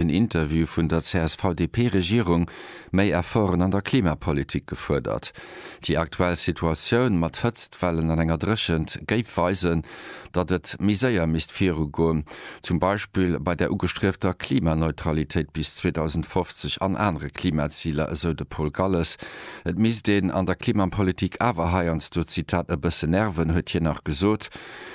en Interview vun der CSV-DP-Regierung, méi Efforten an der Klimapolitik gefuerdert. Déi aktuell Situatioun mat Hëtztwellen an enger Dréchent géif weisen, datt et méi séier misst viru goen, zum Beispill bei der ugestriefter Klimaneutralitéit bis 2050 an anere Klimaziler, esou de Paul Galles. Et misst een an der Klimapolitik awer heiansdo, Zitat, e bësse nerven, huet hien nach gesot.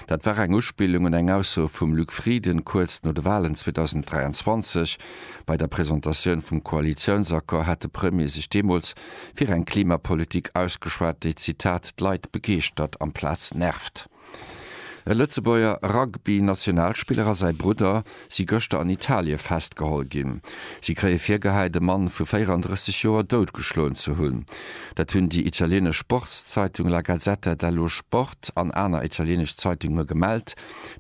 Dat war eng Uspillung un eng Ausso vum Luc Frieden kuerz no de Walen 2023. Bei der Presentatioun vum Koalitiounsaccord hat de Premier sech deemools fir eng Klimapolitik ausgeschwat, déi, Zitat, d'Leit begeeschtert amplaz nervt. E Lëtzebuerger Rugby-Nationalspiller a säi Brudder si gëschter an Italie festgeholl ginn. Si kréie virgehäit, e Mann vu 34 Joer doutgeschloen ze hunn. Dat hunn déi italieenesch Sportszeitung La Gazzetta dello Sport an aner italieenesch Zeitunge gemellt.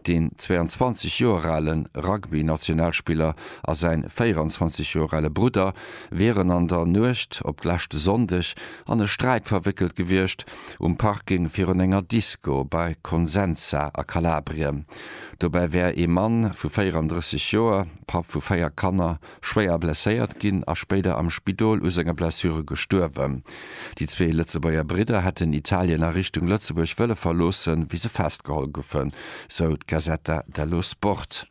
Deen 22 Joer ale Rugby-Nationalspiller a säi 24 Joer ale Brudder wieren an der Nuecht op d'leschte Sonndeg an e Sträit verwéckelt gewiescht, um Parking virun enger Disco bei Consenza a Kalabrien. Dobäi wär ee Mann vu 34 Joer, Papp vu véier Kanner, schwéier blesséiert ginn a spéider am Spidol u senge Blessure gestuerwen. Déi zwee Lëtzebuerger Bridder hätten Italien a Richtung Lëtzebuerg wëlle verloossen, wéi se festgeholl goufen, sou d'Gazzetta dello Sport.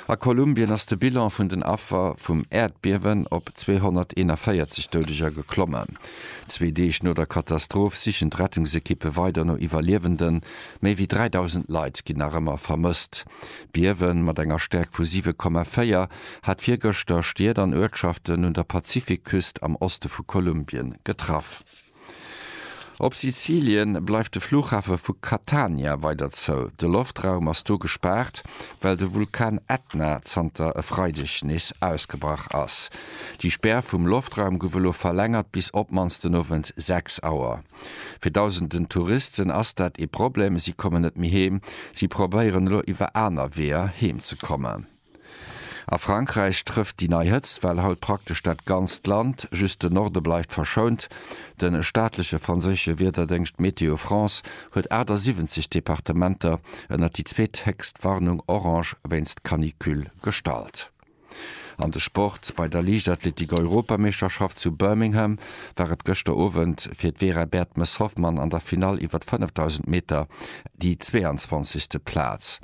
A Kolumbien ass de Bilan vun den Affer vum Äerdbiewen op 241 Doudeger geklommen. Zwee Deeg no der Katastroph sichen d'Rettungsekippe weider no Iwwerliewenden. Méi wéi 3.000 Leit ginn nach ëmmer vermësst. D'Biewe mat enger Stäerkt vu 7,4 hat virgëschter Stied an Uertschaften un der Pazifikküst am Oste vu Kolumbien getraff. Op Sizilien bleift de Flughafe vu Catania weider zou. De Loftraum ass do gespaart, well de Vulkan Ätna zanter e Freideg nees ausgebrach ass. Déi Spär vum Loftraum gouf elo verlängert bis op d'mannst den Owend 6 Auer. Fir dausenden Touristen ass dat ee Problem, si kommen net méi heem. Si probéieren elo iwwer aner Weeër heem ze kommen. A Frankräich trëfft déi nei Hëtztwell haut praktesch dat ganzt Land, just de Norde bleift verschount. De staatleche franséische Wiederdéngscht Météo France huet 78 Departementer ënnert déi zweethéchst Warnung orange wéinst Canicule gestallt. An de Sport, Bei der Liichtathletik-Europameeschterschaft zu Birmingham war et gëschter Owend fir d'Vera Bertmes-Hoffmann an der Finall iwwer d'Fënnefdausend Meter déi 22. Plaz.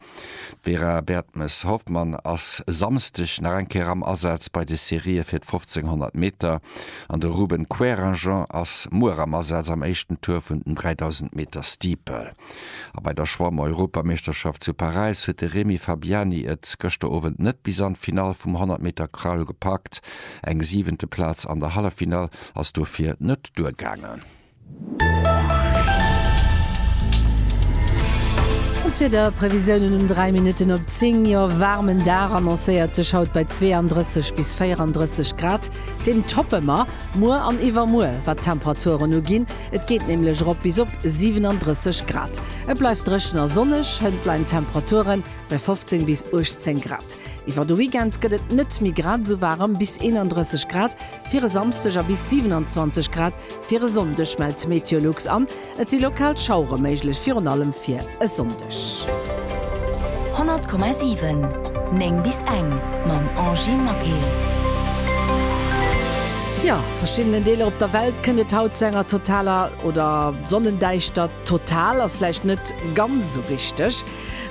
D'Vera Bertmes-Hoffmann ass e Samsdeg nach eng Kéier am Asaz bei de Serië fir d'Fofzénghonnert Meter an de Ruben Querinjean ass muer am Asaz am éischten Tour vun den 3000 Meter Steeple. A bei der Schwamm-Europameeschterschaft zu Paräis huet de Remi Fabiani et gëschter Owend net bis an d'Finall vum 100 Meter Crawl gepackt. Eng siwente Plaz an der Halleffinall ass dofir net duergaangen. D'Wiederprevisiounen um 3 Minutten op 10, Jo, waarmen Dag annoncéiert sech haut bei 32 bis 34 Grad. Deen toppe mer muer an iwwermuer, wat d'Temperaturen uginn. Et geet nämlech erop bis op 37 Grad. Et bleift dréchen a sonneg, hënt leien d'Temperature bei 15 bis 18 Grad. Iwwer de Weekend gëtt et net méi grad esou waarem, bis 31 Grad fir e Samsdeg a bis 27 Grad fir e Sonndeg, mellt Meteolux an. Et si lokal Schauere méiglech, virun allem fir e Sonndeg. 100,7 9 bis eng mam Angie Maquet. Jo, verschiddenen Deeler op der Welt kënnt et haut zu enger totaler oder Sonnendäischtert. Total ass vläicht net ganz esou richteg.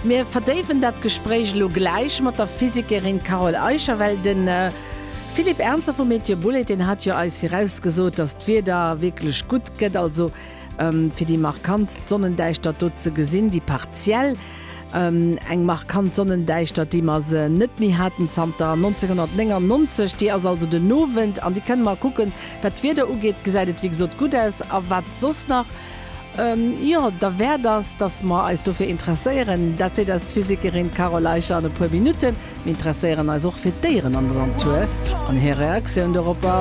Mir verdéiwen dat Gespréich elo gläich mat der Physikerin Carole Eicher, well de Philippe Ernzer vu Météo Boulaide, deen hat jo eis virausgesot, datt d'Wieder wierklech gutt gëtt. Also. Fir déi markantst Sonnendäischtert do ze gesinn, déi partiell, eng markant Sonnendäischtert, déi mer se net méi haten zanter 1999, déi ass also den Owend an déi kënne mer kucken. Wat d'Wieder ugeet, gesäit et wéi gesot gutt aus. A wat soss nach, jo, derwäert ass, datt mer eis dofir interesséieren, dat seet eis d'Physikerin Carole Eicher an e puer Minutten. Mir interesséieren eis och fir d'Déieren an der Natur an hir Reaktioun doropper.